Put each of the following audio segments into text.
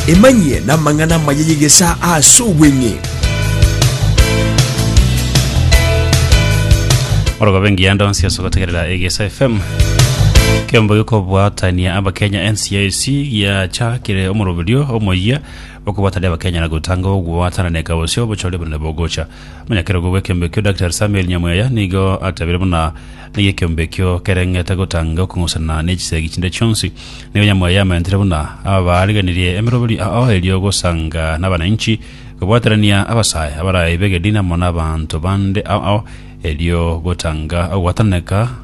Emanyie namang'ana amaya y'egesaa ase obweng'e. orogobe engiya ndonsi ase ogotegerera egesa fm kembo gikobwatania abakenya ncac giachakire omoroberio omoyia bokobwatania abakenya na gotanga ogwatananeka gose obochori obonene bogocha Omonyakerogo bw'ekeombe ekio, Daktari Samuel Nyamweya, nigo atebeire buna naiyo ekeombe ekio kereng'ete gotanga okong'usana ne chisegi chinde chionsi. Nigo Nyamweya amentire buna abaariganirie emeroberi ao erio gosanga n'abananchi, kobwaterania abasae abaraibe Gedina amo n'abanto bande ao, erio gotanga ogwatananeka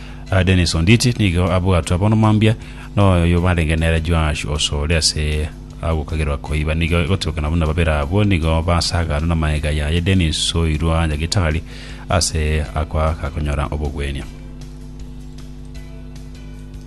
Dennis Onditi nigo abwatwe bono mambia noyo barenge nere Joash Osore ase agokagerwa koiba nigo egotirokana buna babere abwo nigo basaganwa na maega yaye Dennis soirwa Nyagitari ase ako agakonyora obogwenia.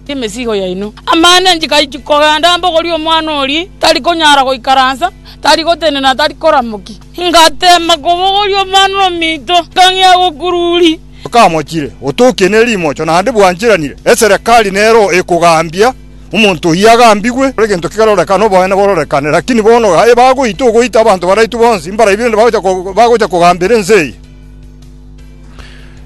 emesigo yaino. Amang'ana nchikaiti kogenda mbogori omwana oria tari konyara goikaransa, tari gotenena, tari koramoki. Ngateema kobogoria omwana ominto, ngang'ea gokururia. Okamochire, otokie ne rimocho, naende bwancheranire. Eserekari nero ekogaambia, Omonto oyio agambigwe, egento kerorekane, oboene bororekane. Lakini bono aye bagoita, ogoita abanto baraitwe bonsi, mbarabi rende bagocha kogambera ense eye.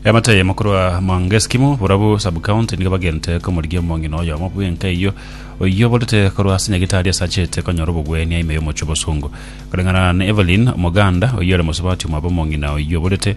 Eamate eyemo korwa Mount Eskimo, Borabu Sub-County, nigo bagente komorigia omong'ina oyomo bw'enka eyio, oyio oborete korwa ase nyagetari ase achete konyora obogwenia ime y'omochie o Bosongo. Koreng'ana na Evelyn, Omoganda, oyio ore mosubati omwabo omong'ina oyio oborete,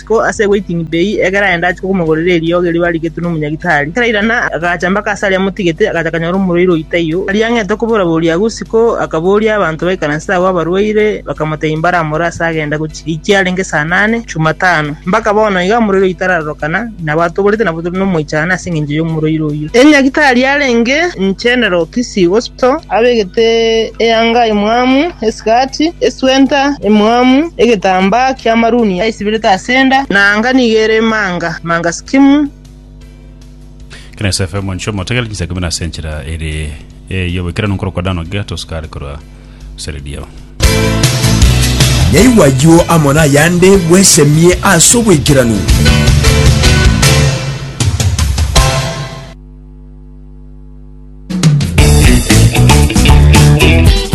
Botuko ase waiting bay ekero aenda achia komogorera eriogi erio barigetwe nomonyagitari, ekero airana agacha mpaka ase aria amotigete, agacha akanyora omorwaire oyio taiyo. Aria ang'ete okobora boria agwo isiko, akaboria abanto baikaranse agwo abarwaire, bakamotebia mbaramore ase agenda gochia echi yarenge saa nane, Jumatano. Mpaka bono iga omorwaire oyio tararorokana, nabo atoborete nabo tore nomoichano ase engencho y'omorwaire oyio. Enyagitari yarenge General Kisii Hospital. Kristo, abegete eanga emwamu esikati, eswenta emwamu, egetambaa ki'amaruni aisibirete ase enda, na anga nigo ere emanga manga sikimu. Ekero Yosefu ere omonchwa, motegerere chinsa ikomi na ase enchera ere y'oboikeranu nkorokwa Dan ogiya tosukare korwa Seredio. Yaigwa ayio amo nayande bwesemie ase oboikeranu.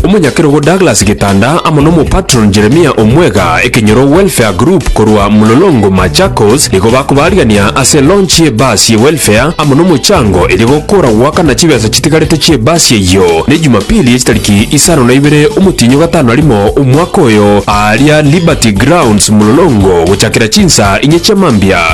Omonyakerogo Douglas Gitanda amo n'omopatron Jeremiah Omwega, Ekenyoro Welfare Group korwa Mlolongo, Machakos, nigo bakobaarigania ase launch ye bus ye welfare amo nomochango eria gokora goakana chibesa chitigarete chie bus eyio. Ne Jumapili ye chitariki isano na ibere omotienyi o gatano na rimo omwaka oyo, aaria Liberty Grounds, Mlolongo, gochakera chinsa inye chia mambia.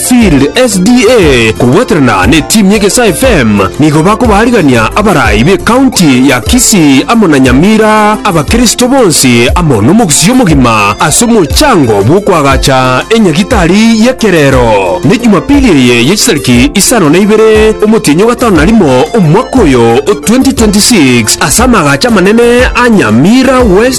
Sealed SDA kobwaterana n'etimu y'Egesaa FM nigo bakobaarigania abarai b'ekaunti ya Kisii amo na Nyamira abakristo bonsi amo nomogusii omogima ase omochango bw'okoagacha enyagitari y'ekerero. Ne Jumapili eye ye chitariki isano na ibere omotienyi o gatano na rimo omwaka oyo o 2026 ase amaagacho amanene a Nyamira West